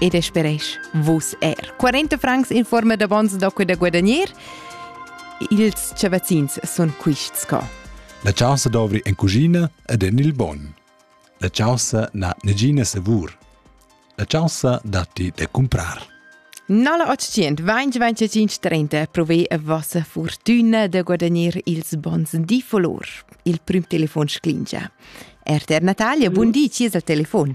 ed speresch vus er. 40 francs in forma d'avons da da guadagnar. Ils chavazzins sun quists co. La chaussa dovri en cucina ed en il bon. La chaussa na negina savur. La chaussa datti da comprar. 980 2025 30 provei a vossa fortuna da guadagnare ils bons di volor. Il prim telefon sclingia. RTR Natalia, buon di, ci al telefon.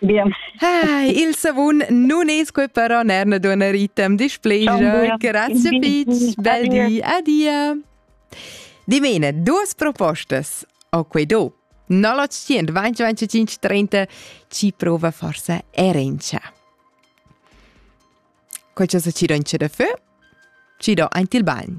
Bien. Hi, il savun non es que però nerna dona ritem displegia. Grazie Fitz, bel di, adia. Dimena, duas propostas o quei do. 0800 2025 30 ci prova forse erencia. Quel che se ci do in ce de feu, ci do anti il bagno.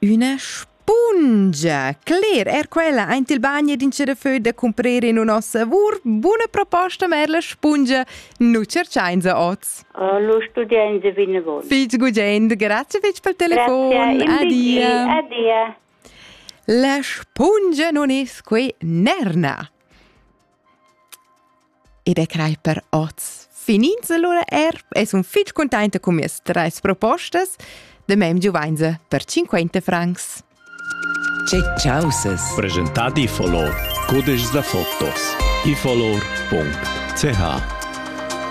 Üna spungia! Cler, er quella aint il bagn ed in da föd da cumprer in nossa lavur. Buna proposta, Merla spungia. Nu cerchainsa oz. Lo studiainsa vinavon. Fitg gugent, grazie fitg pel telefon. Grazie, Adia. Adia. La spungia non es que nerna. e be crai per oz. Finins allora er e sun fich contenta con mie tres propostas de mem giuvainse per 50 francs. Che causes? Presentat i follow. Codice da fotos. i follow.ch